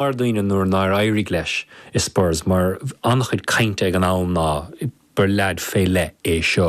mar dhuine nuair nár éirigh leis i Spurs mar an-chuid cainte ag an am ná gur leaid fé leith é seo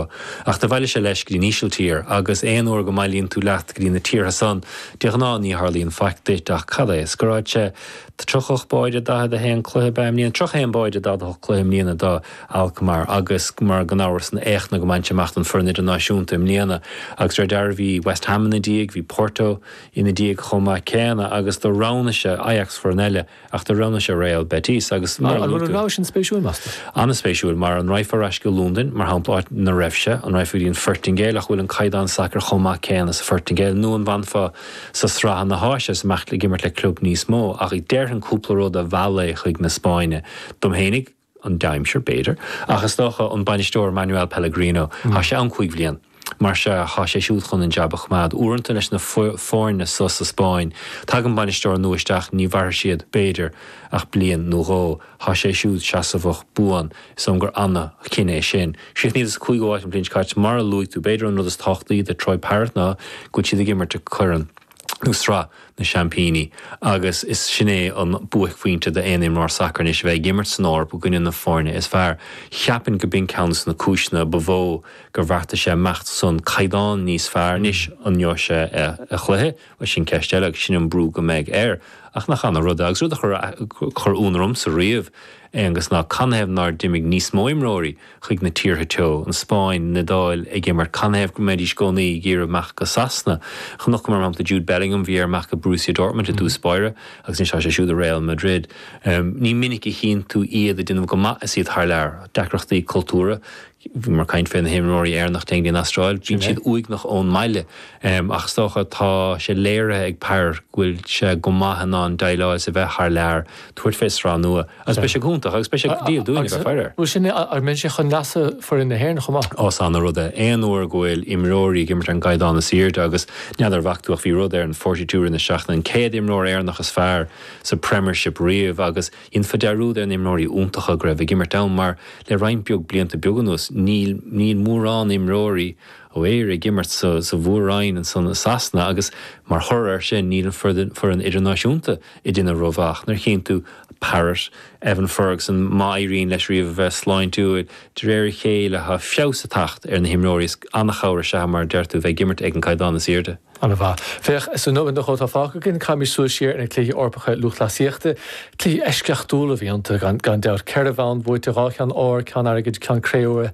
ach do bhailigh sé leis go dtí an Ísiltír agus aon uair go mbailíonn tú leat go dtí na tíortha san de ghnáth ní tharlaíonn faic duit ach cad é scoráil sé 38 báide i 41 cluiche ba é an mbliain 31 báide i 48 cluiche i mbliana do Alkmaar agus mar gan amhras na héachtanna go mbainfidh sé amach don foireann idirnáisiúnta i mbliana agus de réir dealraimh bhí West Ham ina dhiaidh bhí Porto Ina dhiaidh chomh maith céanna agus do roghnaigh sé Ajax foireann eile ach do roghnaigh sé Real Betis agus mar a luaigh tú. An bhfuil an rogha sin spéisiúil meastar? An-spéisiúil, mar an raghfá ar ais go Londain mar shampla áit ina raibh sé, an raghfá go dtí an Phoirtingéil ach bhfuil an caighdeán sacair chomh maith céanna sa Phoirtingéil nó an bhfanfá sa sraith ina tá sé is imeacht ag imirt le club níos mó ach déarfainn cúpla rud a mheall é chuig na Spáinne. Dom fhéinig, an aimsir b'fhéidir, ach is dócha an bainisteoir Manuel Pellegrino, tá sé ann cúig bhliain, mar sin, tá sé siúd chun an jab a choimeád. Uaireanta leis na foirne so sa Spáinn, tagann bainisteoir nua isteach, ní mhairfidh siad, b'fhéidir, ach bliain nó dhó, tá sé siúd seasamhach buan, is dóigh liom gur ana-chinneadh é sin. Chríochnaíodar sa cúigiú áit an bhliain seo caite, mar a luaigh tú, b'fhéidir an rud is tábhachtaí do Troy Parrott ná go bhfuil siad ag imirt i gCorn nó Sraith na Seaimpíní, agus is sin é an buaicphointe d'aon imreoir sacair anois, a bheith ag imirt san Eoraip i gcoinne na foirne is fearr. Cheapfainn go b'in ceann de na cúiseanna ba mhó gur bheartaigh sé imeacht ansan. Caighdeán níos fearr anois, an ngeobhaidh sé a chluiche? Bhuel, sin ceist eile agus sin an brú go mbeidh air. Ach nach ana-rud é, agus rud a chuir ionadh ormsa riamh, Aonghus, ná canathaobh nár d'imigh níos mó imreoirí chuig na tíortha teo, an Spáinn, an Iodáil, ag imirt canathaobh go mbeidís i gcónaí ag iarraidh imeacht go Sasana. Chonaiceamar, mar shampla, Jude Bellingham, bhí air imeacht go Borussia Dortmund i dtús báire agus anois tá sé siúd i Real Madrid. Ní minic a chíonn tú iad ag déanamh go maith is iad thar lear. Deacrachtaí cultúra, bhíomar ag caint fé na himreoirí Éireannacha a théann go dtí an Astráil, bíonn siad uaigneach ón mbaile ach is dócha tá sé léirithe ag Parrott go bhfuil sé go maith in ann déileáil leis a bheith thar lear, tabhairt fé sraith nua. Agus beidh sé go hiontach agus beidh sé go diail dúinn a bheith ag faire air. Bhuel sin é, ach bheadh sé chun leasa foireann na hÉireann chomh maith. Ó is ana-rud é, aon uair go bhfuil imreoirí ag imirt ar an gcaighdeán is airde agus n'fheadar an bhfaca tú ach bhí rud ar an 42 i rith na seachtaine an céad imreoir Éireannach is fearr sa Premiership riamh agus dhéanfa dearúd ar na himreoirí iontacha go raibh ag imirt ann mar le roinnt beag blianta beag anuas níl níl mórán imreoirí ó Éire ag imirt sa sa mhór-roinn ansan i Sasana agus mar thoradh air sin níl an foireann foireann idirnáisiúnta ag déanamh rómhaith ach nuair a chíonn tú Parrott, Evan Ferguson, má éiríonn leis riamh a bheith sláintiúil, de réir a chéile tá feabhas ag teacht ar na himreoirí is an-chabhair is ea, mar a deir tú, bheith ag imirt ag an gcaighdeán is aoirde. An-mhaith. Féach, sa nóimeat nó dhó atá fágtha againn. Caithfimid súil siar ar na Cluichí Eorpacha Lúthchleasaíochta. Cluichí eisceachtúla a bhí iontu, gan dabht. Ceithre bhonn buaite, dhá cheann óir, ceann airgid, ceann cré-umha.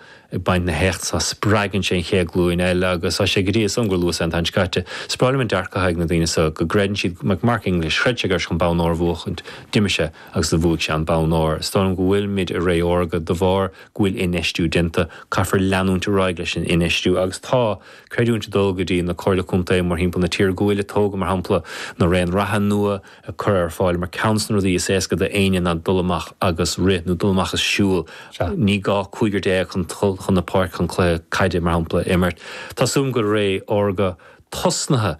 ag baint na héachta so, spreagann sé an chéad glúin eile agus tá sé go dtí, is dóigh liom gur luas é an tseachtain seo caite, is breá liom an dearcadh atá ag na daoine so go gcreideann siad, Mac Mark English, chreid sé go raibh sé chun bonn óir a bhuachaint, d'imigh sé agus do bhuaigh sé an bonn óir. Is dóigh liom go bhfuilimid i ré órga de bharr go bhfuil infheistiú déanta, caithfear leanúint ar aghaidh leis an infheistiú agus tá, creidiúint ag dul go dtí na Comhairle Contae mórthimpeall na tíre go bhfuil, tóg mar shampla na raon reatha nua, curtha ar fáil mar ceann dos na rudaí is éasca do éinne ná dul amach agus rith nó dul amach is siúl. Ní gá cúigear déag chun dul chun na páirce chun cluiche caide mar shampla a imirt. Tá súil agam go bhfuil ré órga tosnaithe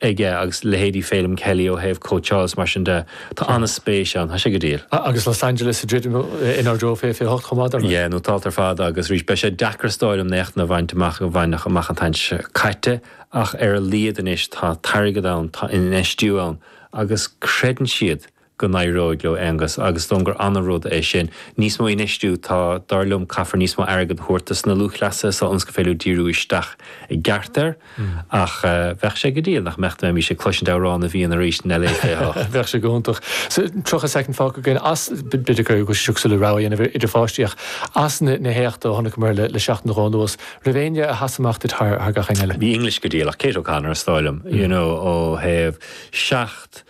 aige agus leithéidí Feidhlim Kelly ó thaobh cóitseáil is mar sin de. Tá ana spéis ann. Tá sé go diail. Agus Los Angeles ag druidim inár dtreo fiche fiche hocht chomh maith dar ndóigh. Yeah, nó tá alt ar fad agus arís beidh sé deacair is dóigh liom na héachtanna a bhaint amach a baineadh amach an tseachtain seo caite. Ach ar a laghad anois tá an t-airgead ann, tá infheistiú ann agus creideann siad go n-éireoidh leo Aonghus agus is dóigh liom gur ana rud é sin. Níos mó infheistiú, tá, dar liom caithfear níos mó airgead a thabhairt dos na lúthchleasaithe so ionas gur féidir leo díriú isteach i gceart air. Ach bheadh sé go diail nach mbeadh dá mbeimis ag cloisint Amhrán na bhFiann arís in LA 28. Bheadh sé go hiontach. So 30 soicind fágtha againn is b'fhéidir go bhfuil sé seo cosúil le rogha a dhéanamh idir pháistí ach as na héachta a chonaiceamar le seachtain nó dhó anuas, raibh éinne a sheas amach duit thar gach éinne eile. Bhí English go diail ach Kate O'Connor is dóigh liom you know ó thaobh seacht,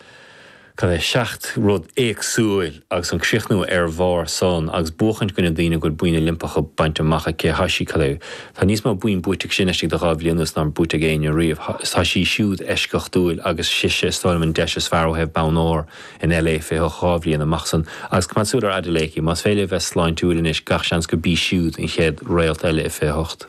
cad é, seacht rud éagsúil agus an críochnú ar bharr san agus buachaint i gcoinne daoine go bhfuil boinn Oilimpeacha bainte amach acu tá sí, cad é, tá níos mó boinn buaite aici sin laistigh de dhá bhliain anuas ná mar buaite ag éinne riamh. Tá sí siúd eisceachtúil agus sise is dóigh liom an deis is fearr ó thaobh bonn óir. In LA 28 dhá bhliain amach san agus coimeád súil ar Adeleke, más féidir léi a bheith sláintiúil anois gach seans gurb í siúd an chéad réalt eile i 28.